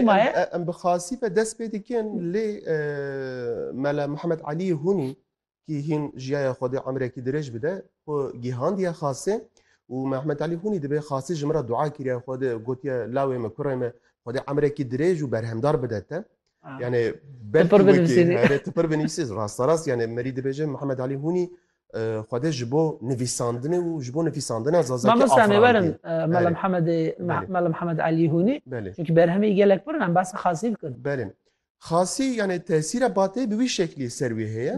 Maye? Em bi xasî ve dest pê dikin lê Mela Mihemed Elî Hunî kî hîn jiyaya xwe dê emrekî dirêj bide xwe gihandiye xasê û Mehmed Elî Hunî dibê xasî ji min re dua kiriye xwe de gotiye lawê me kurê me xwe dê emrekî dirêj û berhemdar bide te. Yani belki wekî tipir binivîsî rasterast yani merî dibêje Mihemed Elî Hunî Xwedê ji bo nivîsandinê û ji bo nivîsandina Zazakî Mamosta me werin Mela Mihemedê Mela Mihemed Elî Hûnî çunkî berhemê wî gelek pir in em behsa Xasî bikin. Belê. Xasî yanê tesîra Bateyê bi wî şeklî ser wî heye.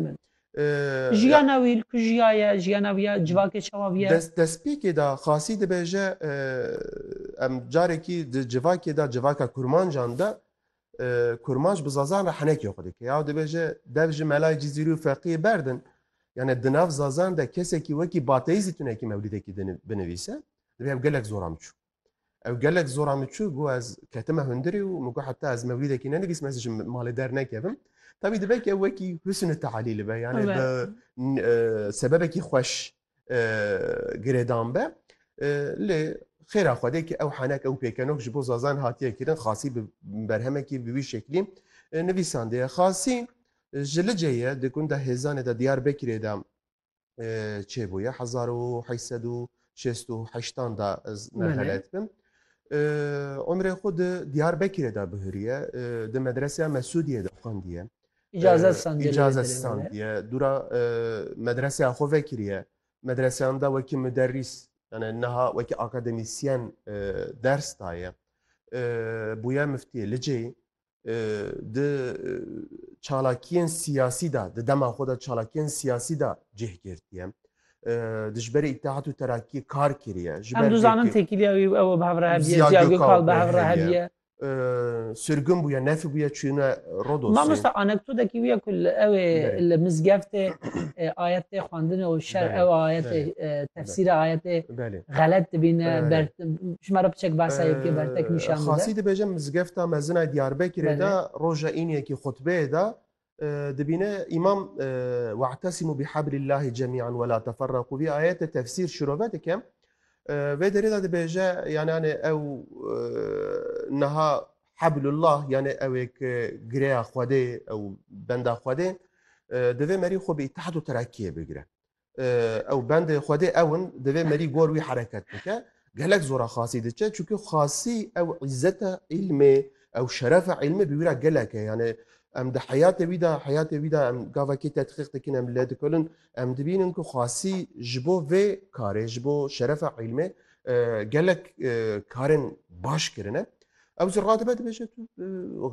Jiyana wî li ku jiyaye, jiyana wî ya civakê çawa bûye? Dest destpêkê de Xasî dibêje em carekî di civakê de civaka kurmancan de Kurmanc bi Zazan re henekê xwe dike. Yaw dibêje dev ji melayê Cizîrî û Feqiyê berdin. Yani di nav Zazan de kesekî wekî Bateyî zî tunekî mewlîdekî binivîse, dibê ev gelek zora min çû. Ew gelek zora min çû got ez ketime hundirê û min got heta ez mewlîdekî nenivîsim ez ji malê dernekevim. Tabî dibe ki ew wekî husnû teelîl be yani bi sebebekî xweş girêdan be. Lê xêra Xwedê ki ew henek ew pêkenok ji bo Zazan hatiye kirin xasî bi berhemekî bi wî şeklî nivîsandiye. Xasî ji Licê ye di gunda Hêzanê de Diyarbekirê de çêbûye hezar û heşt sed û şêst û heştan de ez nehelet bim. Umrê xwe di Diyarbekirê de bihiriye di medreseya Mesûdiyê de xwendiye. icazet standiye. Icazet standiye. Dura medreseya xwe vekiriye. Medreseyan da wekî müderrîs yani niha wekî akademisyen ders daye. Bûye miftiyê licê di çalakiyên siyasî da di dema xwe da çalakiyên siyasî da cih girtiye. Dijberê îtihat û terakî kar kiriye. Em dizanin têkiliya wî ew bi hev re hevdiye, Ziya Gökal bi hev re hevdiye. sirgin bûye nefî bûye çûne Rodosê. Mamosta anekdoteki wî ye ku li ew ê li mizgeftê ayet tê xwendin û şer ew ayetê tefsîra ayetê xelet dibîne ber ji me re piçek behsa yekê bertek nîşan bide. Xasî dibêje mizgefta mezina Diyarbekirê de roja îniyekî xutbeyê de dibîne îmam we'tesimû bi heblîllahî cemî'an we la teferreqû vî ayetê tefsîr şirove dike vê derê de dibêje yanê anê ew niha heblullah yanê ewêk girêya xwedê ew benda xwedê divê merî xwe bi îtihad û terakiyê bigire ew bendê Xwedê ew in divê merî gor wî hereket bike. Gelek zora xasî diçe çunki xasî ew îzzeta îlmê ew şerefa îlmê bi wî ra gelek e yani em di heyatê wî da heyatê wî da em gavekê tetqiq dikin em lê dikurin em dibînin ku xasî ji bo vê karê ji bo şerefa îlmê gelek karên baş kirine. Ew zî radibe dibêje tu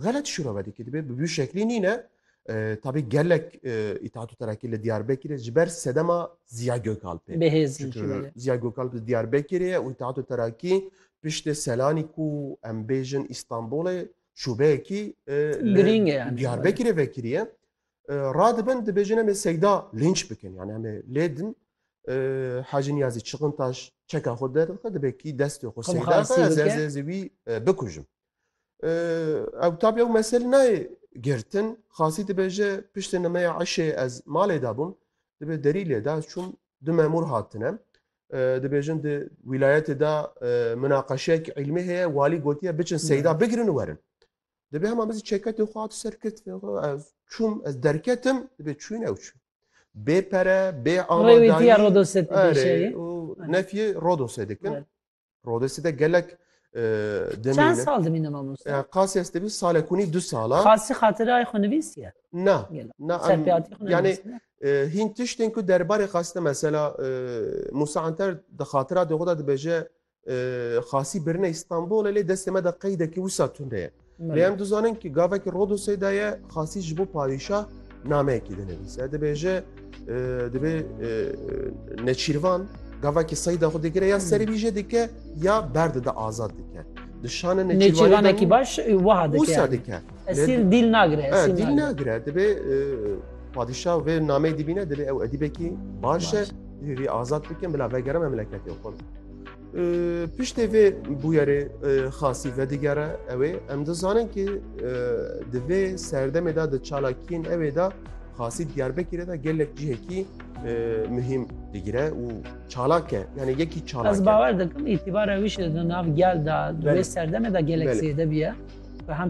xelet şûro vedikî dibê bi wî şeklî nîne Tabi gelek İttihat û Terakî li Diyarbekirê ji ber sedema Ziya Gökalpê. Çünkü Ziya Gökalp li Diyarbekirê ye û İttihat û Terakî piştê Selanî ku em bêjin İstanbulê şûbeyekî girîng e yani. Diyarbekirê vekiriye. Radibin dibêjin em ê Seyda linç bikin yani em ê lêdin Hacı Niyazi Çıkıntaş çeka xwe derdixwe dibê kî destê xwe Seyda xwe ez ez wî bikujim. Ew tab ew mesel nayê girtin. Xasî dibêje piştê nimeya eşê ez malê de bûm. Dibê derî lê de ez çûm du memûr hatine. Dibêjin di wîlayetê de minaqeşeyek îlmî heye walî gotiye biçin seyda bigirin û werin. Dibê hema min zî çeketê xwe hat ser kirt ez çûm ez derketim dibê çûyîn ew çû. Bê pere bê amadayî Rodosê dikin. Rodesî de gelek demîne. Çend sal dimîne mamoste? Qasî ez tevî salekunî du sala. Qasî xatirayê xwe nivîsiye? Na. Na serpiyatî xwe yani hîn tiştên ku derbarê Qasî de mesela Musa Anter di xatira de xwe de dibêje Qasî birine İstanbulê lê destê me de qeydekî wisa tune ye. Lê em dizanin ki gavekî Rodosê de ye xasî ji bo padîşah nameyekî dinivîse. Dibêje divê neçîrvan gavekî seyda xwe digire ya serî vî jê dike ya berdide azad dike. Dişane neçîrvanekî baş wiha dike. dike. Esîl dîl nagire. Dîl nagire divê padîşah vê nameyê dibîne divê ew edîbekî baş e. Divê vî azad bikin bila vegere memleketê xwe. Piştê vê bûyerê xasî vedigere ew ê em dizanin ki di vê serdemê de di çalakiyên ew ê de xasî Diyarbekir de gelek cihekî muhîm digire û çalak e yani yekî çalak Ez bawer dikim îtîbara wî şi di nav gel de di vê serdemê de gelek zêde bûye ve hem